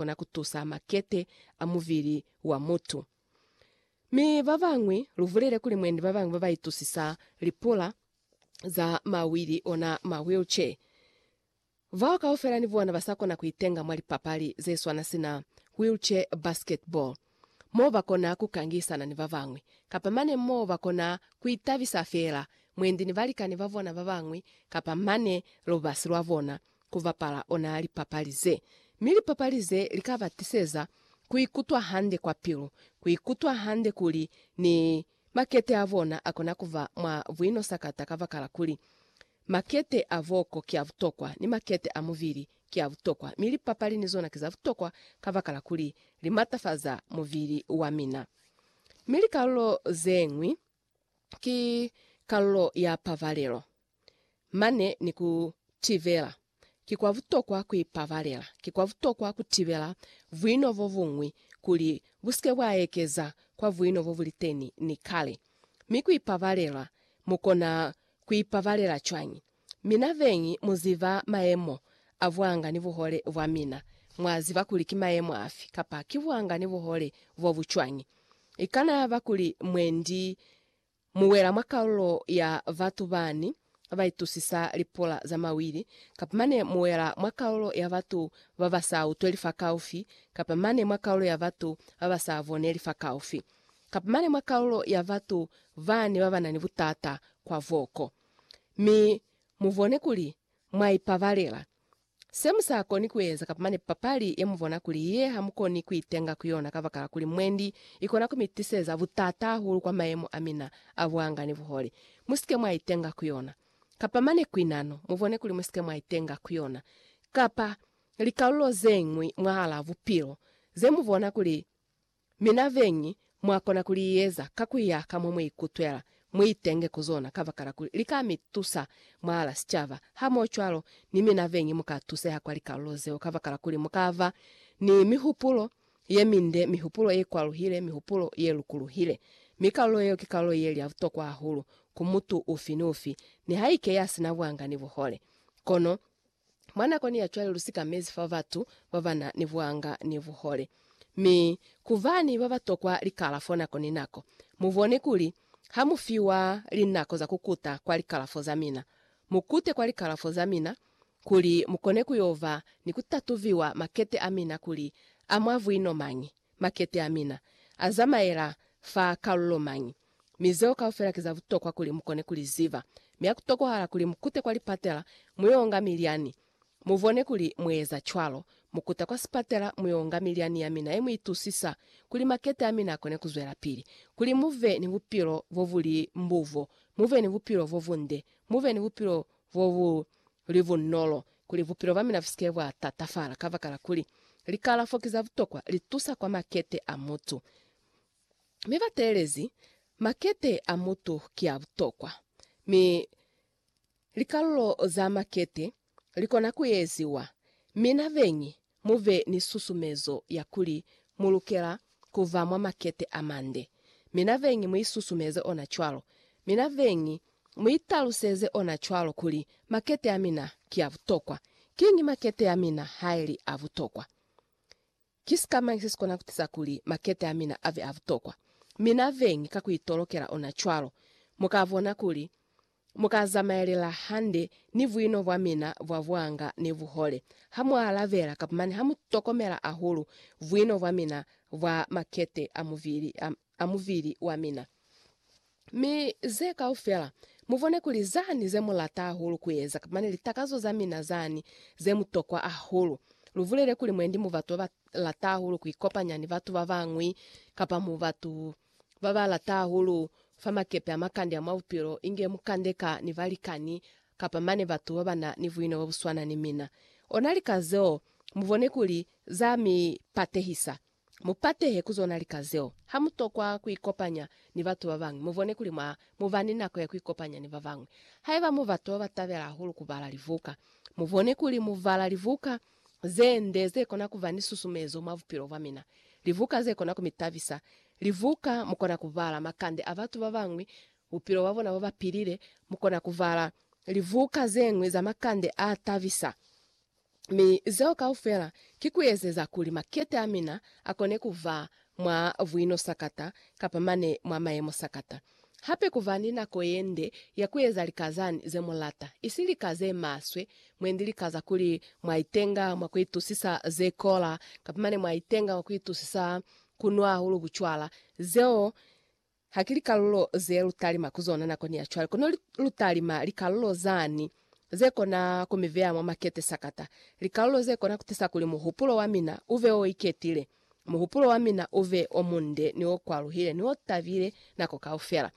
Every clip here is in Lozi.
kona ku tusa makete a mubili wa mutu. Mi ba bañwi, lu bulele kuli mwendi ba bañwi ba ba itusisa lipula za mawili, ona ma wheelchair. Bao kaufela ni bona ba sa kona ku itenga mwa lipapali ze swana sina wheelchair basketball. mo ba kona ku kangisana ni ba bañwi, kapa mane mo ba kona ku itabisa feela mwendi ni balikani ba bona ba bañwi, kapa mane lubasi lwa bona ku bapala ona lipapali ze. Mi lipapali ze li ka ba tiseza ku ikutwa hande kwa pilu, ku ikutwa hande kuli ni Makete a bona a kona ku ba mwa buinosakata kabakala kuli, makete a boko ki a butokwa, ni makete a mubili ki a butokwa, mi lipapali ni zona ki za butokwa kabakala kuli li matafaza mubili wa mina. Mi likalulo ze ñwi ki kalulo ya pabalelo. mane ni ku tibela. Ki kwa butokwa ku ipabalela. Ki kwa butokwa ku tibela buino bo buñwi kuli bu si ke bwa ekeza kwa buino bo bu li teni ni kale. Mi ku ipabalela, mu kona ku ipabalela cwañi? Mina beñi mu ziba mayemo a buanga ni buhole bwa mina. Mwa ziba kuli ki mayemo afi kapa ki buanga ni buhole bo bu cwañi. I kana yaba kuli mwendi Mu wela mwa kalulo ya batu bani ba itusisa lipula za mawili, kapa mane mu wela mwa kalulo ya batu ba ba sa utweli fakaufi, kapa mane mwa kalulo ya batu ba ba sa boneli fakaufi, kapa mane mwa kalulo ya batu bani ba ba na ni butata kwa boko. Mi mu bone kuli mwa ipabalela, Se mu sa koni ku eza kapa mane papali ye mu bona kuli ye ha mu koni ku itenga ku yona kabakala kuli mwendi, i kona ku mi tiseza butata hahulu kwa mayemo a mina a buanga ni buhole. Mu si ke mwa itenga ku yona. Kapa mane ku inano, mu bone kuli mu si ke mwa itenga ku yona, kapa likalulo ze ñwi mwahal'a bupilo, ze mu bona kuli Mi na beñi mwa kona ku li eza ka ku ya ka mo mu ikutwela, mu itenge ku zona kabakala kuli li ka mi tusa mwahala sicaba. Hamohocwalo, ni mi na beñi mu ka tuseha kwa likalulo zeo kabakala kuli mu ka ba ni mihupulo ye minde, mihupulo ye kwaluhile, mihupulo ye lukuluhile. Mi kalulo yeo ki kalulo ye li ya butokwa hahulu ku mutu ufi ni ufi, nihaike ya si na buanga ni buhole. Kono, Mwa nakoni ya cwale lu sikamezi fa batu ba ba na ni buanga ni buhole. Mi, ku ba ni ba ba tokwa likalafo nako ni nako. Mu bone kuli, ha mu fiwa linako za ku kuta kwa likalafo za mina, mu kute kwa likalafo za mina, kuli mu kone ku yo ba ni ku tatubiwa makete a mina kuli a mwa buino mañi, makete a mina a zamaela fa kalulo mañi. Mi zeo kaufela ki za butokwa kuli mukone ku li ziba. Mi ha ku tokohala kuli mukute kwa lipatela, mu yo nga milyani. Mu bone kuli mu eza cwalo. Mu kuta kwa sipatela, mu yo nga milyani ya mina ye mu itusisa, kuli makete a mina a kone ku zwelapili. Kuli mu be ni bupilo bo bu li mbuvo, mu be ni bupilo bo bunde, mu be ni bupilo bo bu li bunolo, kuli bupilo bwa mina bu si ke bwa tatafala. Kabakala kuli likalafo ki za butokwa, li tusa kwa makete a mutu. mi ba teelezi makete a mutu ki a butokwa, mi likalulo za makete li kona ku eziwa. Mi na beñi mu be ni susumezo ya kuli mu lukela ku ba mwa makete a mande, mi na beñi mu isusumeze ona cwalo, mi na beñi mu italuseze ona cwalo kuli, Makete a mina ki a butokwa. Kiñi makete a mina ha e li a butokwa? Ki sika mañi se si kona ku tiza kuli makete a mina a be a butokwa? Mi na beñi ka ku itolokela ona cwalo. Mu ka bona kuli mu ka zamaelela hande ni buino bwa mina bwa buanga ni buhole ha mu alabela kapa mane ha mu tokomela hahulu buino bwa mina bwa makete a mubili. A. a mubili wa mina. Mi ze kaufela, mubone kuli zani ze mulata hahulu kueza, mane litakazo za mina zani ze mutokwa hahulu. Lubulele kuli mwendi mu batu baba lata hahulu kuikopanya ni batu babañwi, kapa mu batu baba lata hahulu fa makepe a makande a mwa bupilo, inge mukandeka ni balikani, kapa mane batu babana ni buino bobuswana ni mina. Ona lika zeo, mubone kuli za mi patehisa. Mu patehe ku zona lika zeo. Ha mu tokwa ku ikopanya ni batu ba bañwi, mu bone kuli mwa mu ba ni nako ya ku ikopanya ni ba bañwi. Haiba mu batu ba ba tabela hahulu ku bala libuka, mu bone kuli mu bala libuka ze nde ze kona ku ba ni susumezo mwa bupilo bwa mina, libuka ze kona ku mi tabisa, libuka mu kona ku bala makande a batu ba bañwi, bupilo bwa bona bo ba pilile. Mu kona ku bala libuka ze ñwi za makande a tabisa. Mi zeo kaufela ki kuezeza kuli makete amina akone kuva mwa buino sakata kapa mane mwa mayemo sakata. Hape kuva ni nako yende ya kueza lika zani zemulata, isi lika zemaswe, mwendi lika za kuli mwaitenga mwa kuitusisa zekola kapa mane mwaitenga mwa kuitusisa kunwa hahulu bucwala, zeo Ha ki likalulo ze lu talima ku zona nakoni ya cwale, kono lu talima likalulo zani ze kona ku mi veya mwa makete sakata, likalulo ze kona ku tisa kuli muhupulo wa mina u be o iketile, muhupulo wa mina u be o munde ni o kwaluhile ni o tabile nako kaufela.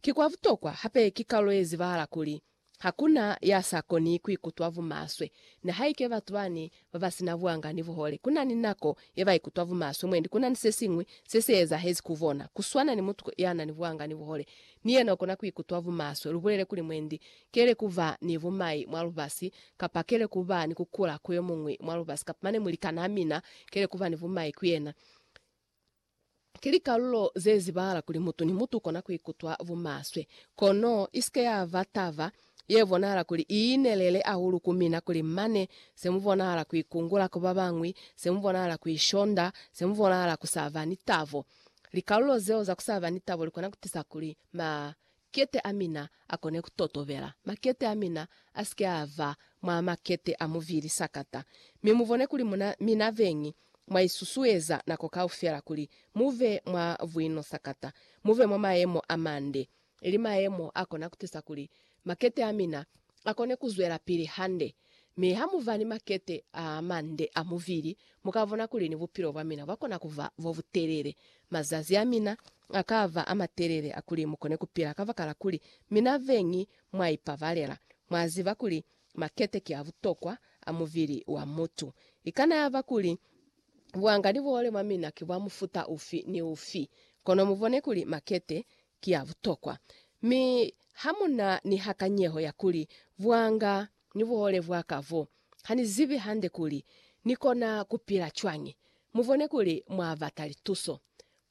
Ki kwa butokwa hape ki kalulo ye zibahala kuli Hakuna ya sa koni kuikutwa bumaswe, nihaike batu bani babasina buanga ni buhole. Kunani nako ye baikutwa bumaswe mwendi kunani sesiñwi se se ezahezi ku bona. Kuswana ni mutu yanani buanga ni buhole, ni yena ukona kuikutwa bumaswe. Lubulele kuli mwendi kele kuba ni bumai mwa lubasi, kapa kele kuba ni kukula ku yomuñwi mwa lubasi, kapa mane mulikanaa mina kele kuba ni bumai ku yena. Ki likalulo ze zibahala kuli mutu ni mutu ukona kuikutwa bumaswe. Kono isike yaba taba ye bonahala kuli iinelele ahulu ku mina kuli mane se mubonahala kuikungula ku babañwi, se mubonahala kuishonda, se mubonahala kusaba ni tabo. Likalulo zeo za kusaba ni tabo likona kutisa kuli ma Makete a mina a kone ku totobela. Makete a mina a si ke a ba mwa makete a muvili sakata. Mi mu bone kuli muna, mina beñi, mwa isusueza nako kaufela kuli mu be mwa buino sakata, mu be mwa mayemo a mande, ili mayemo a kona ku tisa kuli makete a mina a kone ku zwelapili hande. Mi ha mu ba ni makete a mande a muvili, mu ka bona kuli ni bupilo bwa mina bwa kona ku ba bo butelele. Mazazi a mina a ka ba a matelele a kuli mu kone ku pila kabakala kuli mi na beñi mwa ipabalela. Mwa ziba kuli makete ki a butokwa a mubili wa mutu. I kana ya ba kuli buanga ni buhole mwa mina ki bwa mufuta ufi ni ufi, kono mu bone kuli makete ki a butokwa. Mi ha mu na ni hakanyeho ya kuli buanga ni buhole bwa ka bo, ha ni zibi hande kuli ni kona ku pila cwañi, mu bone kuli mwa bata lituso.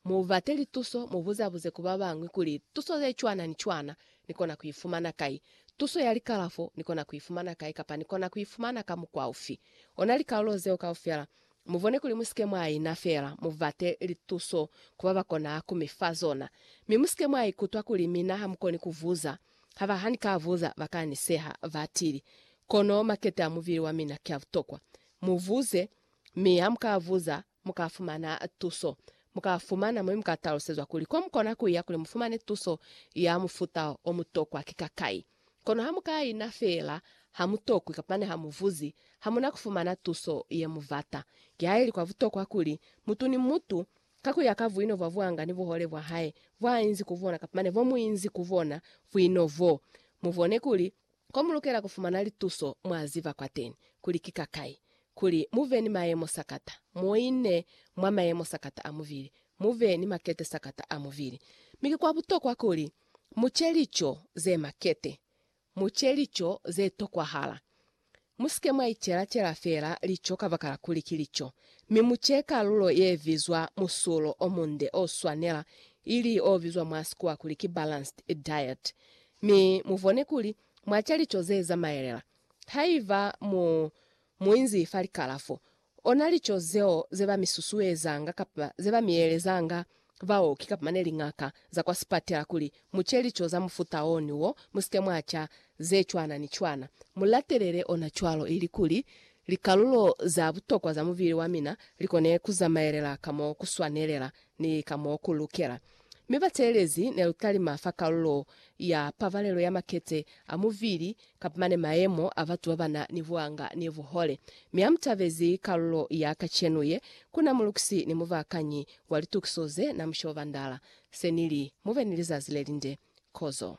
Mu bate lituso, mu buzabuze ku ba bañwi kuli, Tuso ye cwana ni cwana ni kona ku i fumana kai? Tuso ya likalafo ni kona ku i fumana kai kapa ni kona ku i fumana ka mukwa ufi? Ona likalulo zeo kaufela. Mu bone kuli mu si ke mwa ina feela, mu bate lituso ku ba ba konaa ku mi fa zona. Mi mu si ke mwa ikutwa kuli mina ha mu koni ku buza, haba ha ni ka buza ba ka ni seha, batili. Kono makete a mubili wa mina ki a butokwa. Mu buze, mi ha mu ka buza, Mu ka fumana tuso. Mu ka fumana mo mu ka talusezwa kuli ko mu kona ku ya kuli mu fumane tuso ya mufuta o mu tokwa ki kakai. Kono ha mu ka ina feela, ha mu tokwi kapa ne ha mu vuzi, ha mu na ku fumana tuso ye mu bata. Kihaeli kwa butokwa kuli, mutu ni mutu, ka ku ya ka buino bwa buanga ni buhole bwa hae, bwa inzi ku bona kapa ne bo mu inzi ku bona, buino boo, mu bone kuli, Ko mu lukela ku fumana lituso mwa ziba kwateni kuli ki kakai kuli mu be ni mayemo sakata moine mwa mayemo sakata a mubili, mu be ni makete sakata a mubili. Mi ki kwa butokwa kuli mu ce lico ze makete, mu ce lico ze tokwahala. Mu si ke mwa icela-cela fela lico kabakala kuli ki lico, mi mu ce kalulo ye bizwa musulo o munde o swanela, ili o bizwa mwa Sikuwa kuli ki balanced diet. Mi mubone kuli mwa ca lico ze zamaelela. Haiba mu mu inzi fa likalafo, ona lico zeo ze ba mi susuezanga kapa ze ba mi elezanga baoki kapa mane liñaka za kwa sipatela kuli mu ce lico za mufuta o ni wo, mu si ke mwa ca ze cwana ni cwana. Mu latelele ona cwalo ili kuli likalulo za butokwa za mubili wa mina li kone ku zamaelela ka mo ku swanelela. ni ka mo ku lukela. Mi bateelezi ne lu talima fa kalulo ya pabalelo ya makete a muvili kap mane mayemo a batu ba ba na ni buanga ni buhole. Mi ha mu tabezi kalulo ya kacenu ye, ku na mulukisi ni mubaakanyi wa litukiso ze na mu shobandala. Se nili, Mu be ni lizazi le linde. Kozo.